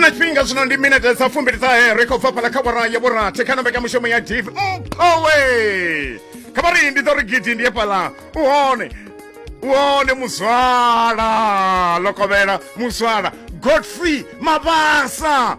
na tshifhinga zwino ndi minete dza fumbiliṱahe ri khou bva fhala kha vhora ya vhurathi kha nombeka mushumo ya div mphowe kha vhari ndi ḓo ri gidi ndi ye fhala u hone u hone muzwala lokovhela muzwala godfrey mabasa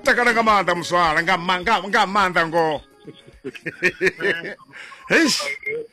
takala nga maanḓa muzwala nga ma- nga- nga maanḓa ngoho heish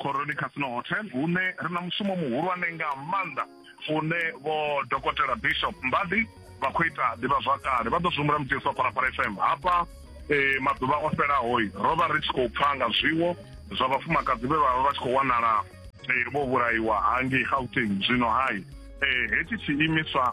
Khoroni Casino Hotel hune ri na mushumo muhulwane nga maanḓa une vho dokotela Bishop Mbadi vha khou ita ḓivhazwakale vha ḓo zwi humbula mudzi wa Phalaphala FM hafha eh, maḓuvha o fhelaho ro vha ri tshi khou pfa nga zwiwo zwa vhafumakadzi vhe vha vha vha tshi khou wanala eh, vho vhulaiwa hangei Gauteng zwino hai eh, hetshi tshiimiswa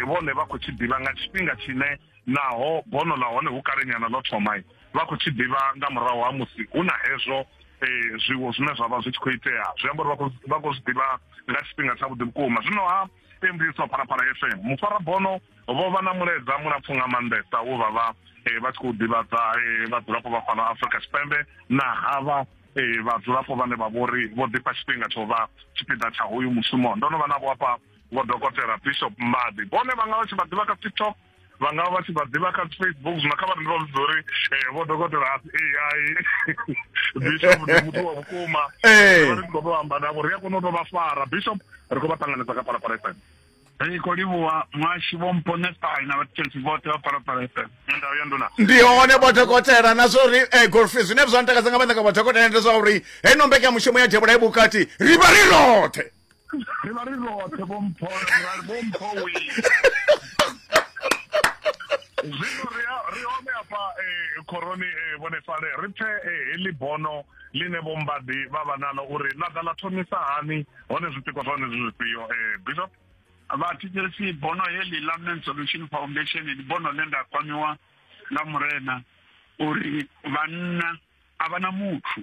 vhone vha khou tshi ḓivha nga tshifhinga tshine Naho bono ḽa hone hu kalenyana ḽo thoma, vha khou tshi ḓivha nga murahu ha musi hu na hezwo e, zwiwo zwine zwa vha zwi tshi khou itea. Zwi amba uri vha khou zwi ḓivha nga tshifhinga tshavhuḓi vhukuma. Zwino-ha, e mbudziso wa Phalaphala FM, mufarabono vho vha na mulaedza mulapfu nga maanḓesa wo vha vha e, vha tshi khou ḓivhadza e, vhadzulapo vha fhano Afrika Tshipembe na havha e, vhadzulapo vhane vha vhori vho ḓifha tshifhinga tsho vha tshipiḓa tsha hoyu mushumo. Ndo no vha navho hafha. Vho Dokotela Bishop Mbadi vhone vha nga vha tshi vha ḓivha kha TikTok vha nga vha tshi vha ḓivha kha Facebook zwino kha vha ndi vha vhudza uri eh, vho dokotela a si AI Bishop ndi muthu wa vhukuma eh. ri khou tou amba navho ri a kona u tou vha fara Bishop ri khou vha ṱanganedza kha Phalaphala FM ri khou livhuwa muhashi vho mponestai na vhatshentsi vhoṱhe vha Phalaphala FM ndau ya nduna ndi hone vho dokotela na zwa uri eh, golfi zwine zwa ntakadza nga maanḓa nga vho dokotela ndi zwa uri heino mbekanyamushumo ya devhula i vhukati ri vha ri roṱhe ri vha ri roṱhe vho mpho vho mpho wi zwino ri ri hone hafha eh, khoroni eh, vhone fale ri pfe eh, heḽi bono ḽine vho mbadi vha vha nalo uri ḽa ḓa ḽa thomisa hani hone zwipiko zwa hone zwi zwifhio eh, bishop vhathetshelesi bono heḽi ḽa men solution foundation ndi bono ḽe nda kwamiwa nga murena uri vhanna a vha na muthu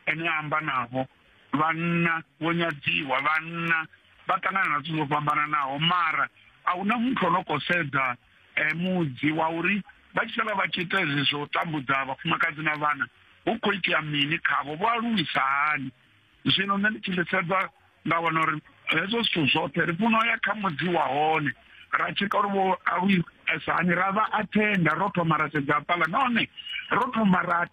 ene a amba navho vhanna vho nyadziwa vhanna vha ṱangana na zwithu zwo fhambananaho mara a huna muthu ono khou sedza um mudzi wa uri vha tshi sala vha tshi ita hezwi zwo tambudza vhafumakadzi na vhana hu khou itea mini khavho vho aluwisa hani zwino nṋe ndi tshi ḽi sedza nda wana uri hezwo zwithu zwoṱhe ri funa ya kha mudzi wa hone ra tshika uri vho awi sani ra vha athenda ro thoma ra sedza pala nahone ro thoma ra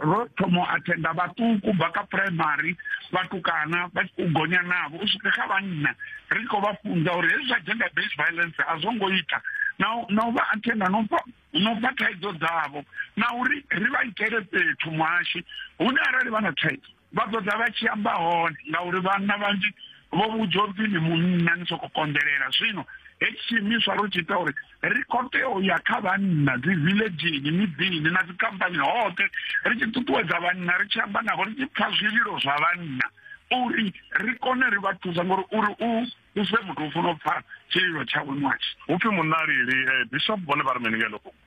ro thoma athenda vhaṱuku bva kha primary vhatukana vha u gonya navho u swika kha vhanna ri khou vha funza uri hezwi zwa gender based violence a zwo ngo ita na na u vha athenda no pfa no pfa thaidzo dzavho na uri ri vha itele fhethu muhashi hune arali vha na thaidzo Vha ḓo ḓa vha tshi amba hone, ngauri vhanna vhanzhi vho vhudzwa upfi ni munna ni soko konḓelela. Zwino hetshi tshiimiswa ro tshi ita uri ri khou tea u ya kha vhanna dzi villagini, miḓini na dzi khamphani hoṱhe ri tshi ṱuṱuwedza vhanna ri tshi amba navho ri tshi pfa zwililo zwa vhanna uri ri kone ri vha thusa ngori uri u u se muthu u funa u pfa tshililo tshawe ṅwashi. Hupfi munna lili eh, Bishop vhone vha ri mini nga heḽo fhungo?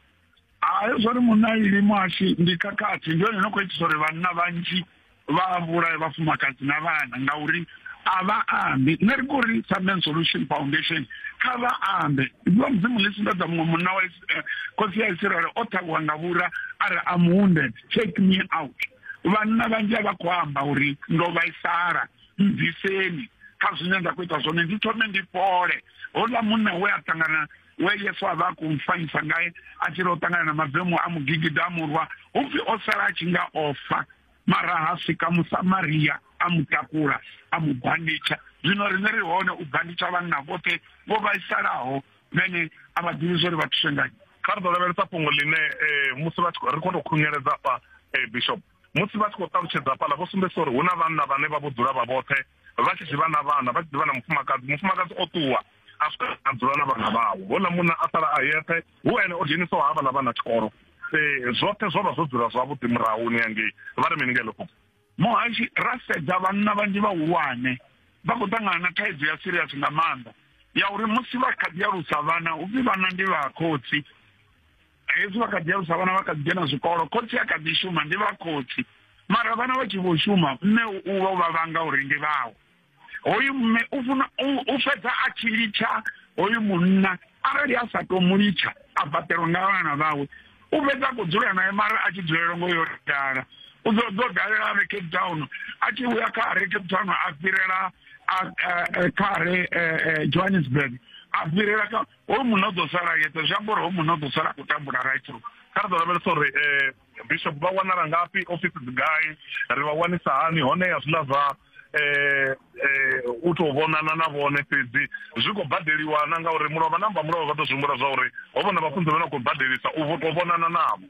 hayo zwa ri munna ili muhashi ndi khakhathi ndi yone no khou itisa uri vhanna vhanzhi vha vhulaye vhafumakadzi na vhana ngauri a vha ambi nṋe ri kuri sa men solution foundation kha vha ambe ndiwa mudzimu ḽi sumbedza muṅwe munna wa eh, khosi ya isiraele o ṱhavhiwa nga vhura a ri am wounded take me out vhanna vhanzhi a vha khou amba uri ndo vhaisala mbviseni kha zwine nda khou ita zwone ndi thome ndi fhole houḽa munna we a ṱangana we yesu a vha a khou fanyisa ngae a tshi ri o ṱangana na mavemu a mugigida a murwa hu pfi o sala a tshi nga o fa mara ha swika musamaria a mu takula a mu banditsha zwino riṋe ri hone u banditsha vhanna vhoṱhe vho vhaisalaho vhene a vha ḓivhi zwo ri vha thuse ngayo kha ri ḓo lavhelesa fhungo ḽine eh, musi ri khou tou khunyeledza fha eh, bishop musi vha tshi khou ṱalutshedza hafhaḽa vho sumbedzisa uri hu na vhanna vhane vha vho dzula vha vhoṱhe vha tshi zwi vha na vhana vha tshi ḓivha na mufumakadzi mufumakadzi o ṱuwa a swika a dzula na vhana vhawe houḽa munna a sala a yeṱhe hu ene o dzhenisaho ha vhala vhana tshikolo um zwoṱhe zwo vha zwo dzula zwavhuḓi murahuni yangei vha ri mini nga iḽo fhungo muhashi ra sedza vhanna vhanzhi vhahulwane vha khou ṱangana na thaidzo ya serious nga maanḓa ya uri musi vha kha ḓi alusa vhana upfi vhana ndi vha khotsi hezwi vha kha ḓi alusa vhana vha kha ḓi dzhena zwikolo khotsi a kha ḓi shuma ndi vha khotsi mara vhana vha tshi vho shuma mme u vha u vha vhanga uri ndi vhawe hoyu mme u funa u fhedza a tshi litsha hoyu munna arali a sa to mu litsha a fhaṱelwa nga vhana vhawe u fhedza khou dzula naye mara a tshi dzulela ngo yo dala u ḓo ḓo dalela re cape town a tshi vhuya kha re cape town a fhirela kha re johannesburg a fhirela kha hoyu munna u ḓo sala yeṱhe zwi amba uri hoyu munna u ḓo sala a khou tambula right through kha ri ḓo lavhelesa uri eh, bishop vha wanala ngafhi ofisi dzi gai ri vha wanisa hani hone ya zwiḽa zwa eh, eh, u tou vhonana na vhone fhedzi zwi khou badeliwa na ngauri mulovha namba mulovha vha ḓo zwi humbula zwa uri ho vhona vhafunzi vha na khou badelisa u tou vhonana navho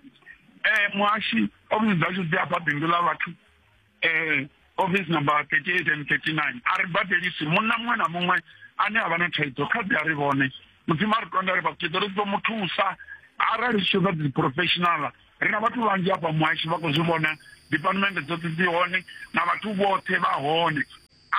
um muhashi ofisi dzashu dzi afha bindu ḽa vhathu eh, office number 38 and 39 a ri badelisi munna muṅwe na muṅwe ane a vha na thaidzo kha ḓi a ri vhone mudzimu a ri konda ri vhakuṱeḓo ri ḓo mu thusa arali zwi tshoḓa dzi professional ri na vhathu vhanzhi hafha muhashi vha khou zwi vhona department dzoṱhe dzi hone na vhathu vhoṱhe vha hone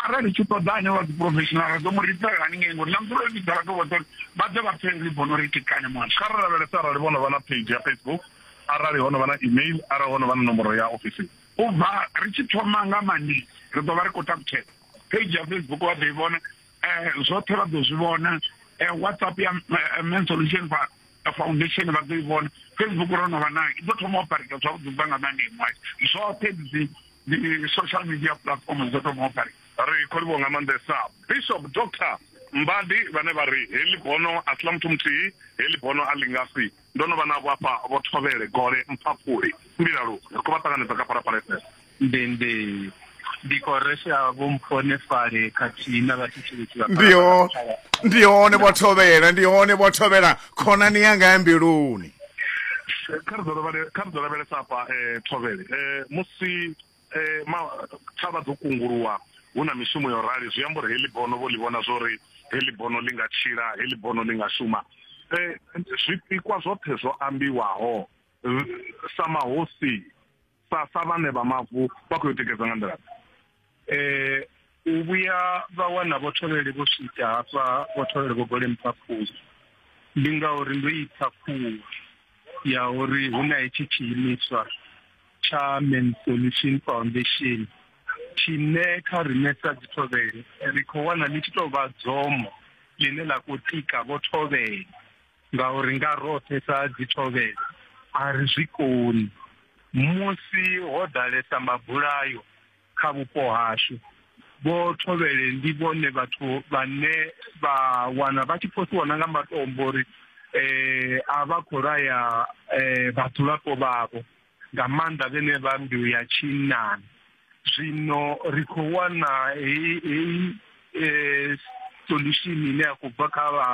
arali tshi ṱoḓa ane wa dzi professional ra ḓo mu ripela haningei ngori na muthu ro vhidza vhathu vhoṱhe vha ḓe vha pfhe ri bono ri tikane muhashi kha ri lavhelesa arali vhono vha na page ya facebook arali hono vha na email arali hono vha na nomboro ya ofisini u bva ri tshi thoma nga mandi ri ḓo vha ri khou takutshela page ya facebook vha ḓo i vhona um zwoṱhe vha ḓo zwi vhona um whatsapp ya eh, man solution fa foundation vha ḓo i vhona facebook ro no vha nayo i ḓo thoma operata zwavhuḓi bva nga mandi mwayo zwoṱhe dzi ndi social media platform dzo thoma operata ri khou livho nga maanḓesa bishop doctor mbadi vhane vha ri heḽi bono a si ḽa muthu muthihi heḽi bono a ḽi nga si Ndo no vha navho afha, Vho Thovhele, Gole, Mphaphuli, Mbilalu, ri khou vha ṱanganedza kha Phalaphala FM. Ndende, Ndi khou resha Vho Mphonefhale khathihi na vhathetshelesi vha Ndi ho, Phalaphala FM. ndi hone Vho Thovhela, ndi hone Vho Thovhela, khonani yanga ya mbiluni. Eh, Kha ri ḓo lavhele- kha ri ḓo lavhelesa hafha eh, Thovhele, eh, musi Eh, ma thavha dzo kunguluwa hu na mishumo yo rali zwi amba uri heḽi bono vho ḽi vhona zwo ri heḽi bono ḽi nga tshila heḽi bono ḽi nga shuma eh, zwipikwa zwoṱhe zwo ambiwaho eh, sa mahosi sa sa vhane vha mavu vha khou yo tikedza nga nḓila eh u vhuya vha wana vhotholeli vho swika hafha vhotholeli vho gole mphaphuli ndi ngauri ndo ipfa khuwa ya uri hu na hetshi tshiimiswa tsha Men's Solution Foundation tshine kha riṋe sa dzithovhele ri khou wana ḽi tshi tou vha dzomo ḽine ḽa khou tika vho thovhele ngauri nga roṱhe sa dzithovhele a ri zwi koni musi ho ḓalesa mabulayo kha vhupo hashu vho thovhele ndi vhone vhathu vhane vha wana vha tshi phosiwa na nga matombo uri eh a vha khou laya eh vhadzulapo vhavho nga maanḓa vhene vha mbeu ya tshinnani zwino ri khou wana heyi heyi um solution ine ya khou bva kha vha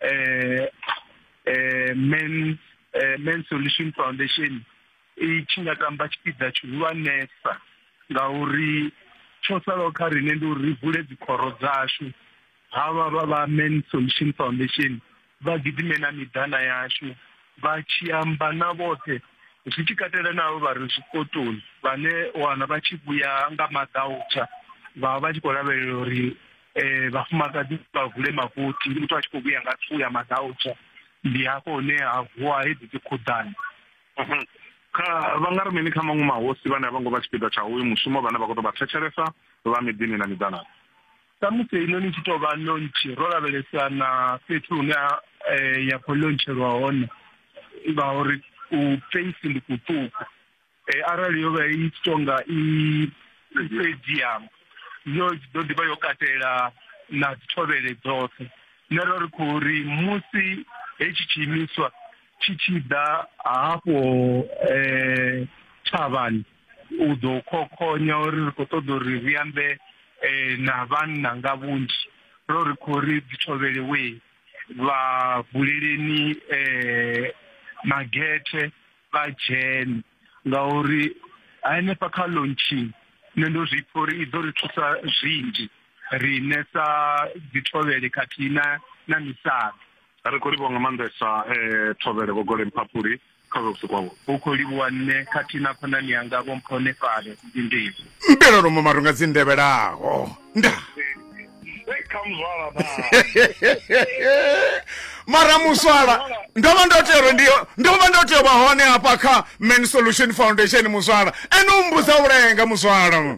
um um men um men solution foundation i tshi nga tamba tshipiḓa tshihulwanesa ngauri tsho salaho kha riṋe ndi uri ri vule dzikhoro dzashu havha vha vha men solution foundation vha gidime na miḓana yashu vha tshi amba na vhoṱhe zwi tshi katela navho vha re zwikotoni vhane wana vha tshi vhuya nga maḓautsha vha vha tshi khou lavhelela uri um vhafumakadzi vha vule makothi muthu a tshi khou vhuya nga thuu ya maḓautsha ndi hafho hune ha vuwa hedzi dzi khuḓani mhm. kha vha nga ri mini kha maṅwe mahosi vhane a vho ngo vha tshipiḓa tsha uyu mushumo vhane vha khou tou vha thetshelesa vha miḓini na miḓanani Samusi heinoni i tshi tou vha lontshi, ro lavhelesa na fhethu hune eh, ya khou lontshelwa hone ngauri u feisi ndi kuṱuku eh, arali yo vha i tshi tou nga i stadium yo ḓo ḓi vha yo katela na dzithovhele dzoṱhe nṋe ro ri khou ri musi hetshi tshiimiswa tshi tshi ḓa hafho um thavhani u ḓo khokhonya uri ri khou ṱoḓa uri ri ambe eh, na vhanna nga vhunzhi ro ri khou ri dzi thovhelewe vha buleleni eh, magethe vha dzhene ngauri hanefha kha launching nṋe ndo zwi pfha uri i ḓo ri thusa zwinzhi riṋe sa dzithovhele khathihi na na misala ri khou livhuwa nga maanḓesa um thovhele vhogole mphaphuli kha vha vhusi kwavho. Hu khou livhuwa nṋe khathihi na khonani yanga Vho Mpho Nefale ndi ndivhi. Mbela lomo maronga dzi ndevhelaho nda mara muswala ndo vha ndo tea uri ndi ndo vha ndo tea u vha hone hafha kha man solution foundation muswala ene u mbudza u lenga muswala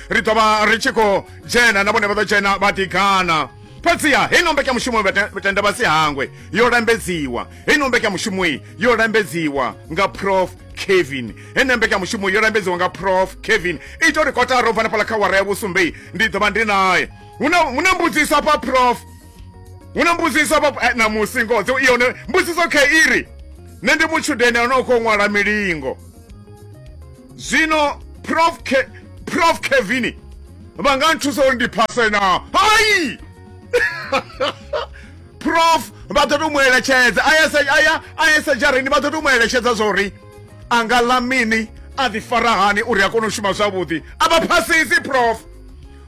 ri ḓo vha ri tshi khou dzhena na vhone vha ḓo dzhena vha ḓigana fhedziha hei no mbekanyamushumo vhatenda vha si hangwe yo lambedziwa hei no mbekanyamushumo yo lambedziwa nga prof kevin hene mbekanyamushumo yo lambedziwa nga prof kevin ita uri kotara u bva na fhala kha wara ya vhusumbe ndi ḓo vha ndi naye hu na mbudziso afha prof hu na mbudziso afha eh, na musi ngodzo i yone mbudziso kha iri nṋe ndi mutshudeni ano u khou ṅwala milingo zwino prof Ke, prof kevini vha nga nthusa uri ndi phase na hai prof vha ḓo to mu eletshedza aya aya sedzhareni vha ḓo to mu eletshedza zwa uri a nga ḽa mini a ḓifara hani uri a kone u shuma zwavhuḓi a vha phasisi prof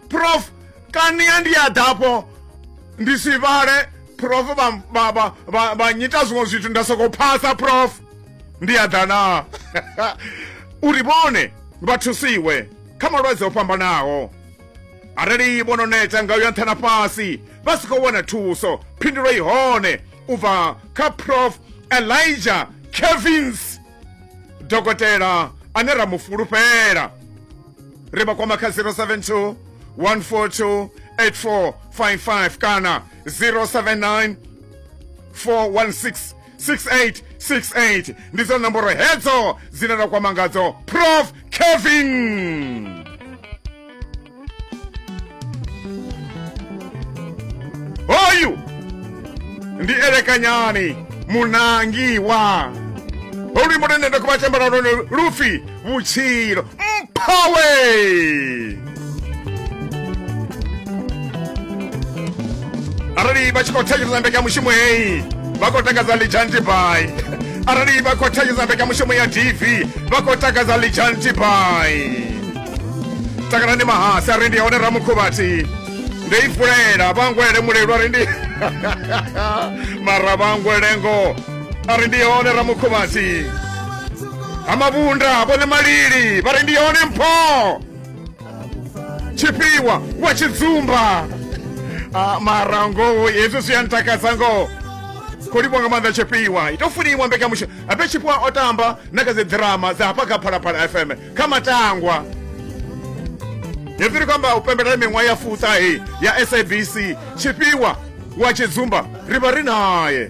prof kania ndi a ḓafho ndi si vhale prof vha nyita zwiṅwe zwithu nda soko phasa prof ndi a ḓa na uri vhone vha thusiwe kha malwadze o fhambanaho arali vho no neta nga uya nṱha na fhasi vha si khou wana thuso phindulo i hone u bva kha prof elijah kevins dokotela ane ra mu fulufhela ri vha kwama kha 072 142 8455 kana 079 416 6868 ndi dza nomboro hedzo dzine ra kwama ngadzo prof kevin hoyu ndi elekanyani munangiwa olwi mudendenda kuva chambala lone lufi vhutshilo mphawe arali vha tshi khou thetshelesa mbekanyamushumo heyi vha khou takadza lijanti bai arali vha khou thetshelesa mbekanyamushumo ya dv vha khou takadza lijanti bai takalani mahasi a ri ndi hone ramukhuvhati ndo i fulela vhangwele mulelu a ri ndi mara vhangwelengo a ri ndi hone ramukhuvhati amavunda vhone malili vha ri ndi yone mpho tshifhiwa wa tshidzumba Ah, mara ngoho hezwi zwi a ntakadza ngoho khou livhwa nga maanḓa tshifhiwa ito funiwa mbekanyamushumo ape tshifhiwa o tamba na kha dzi ḓirama dza hafha kha phalaphala fm kha matangwa hezwi ri khou amba u pembelela miṅwaha ya fuṱahe ya sabc tshifhiwa wa tshidzumba ri vha ri naye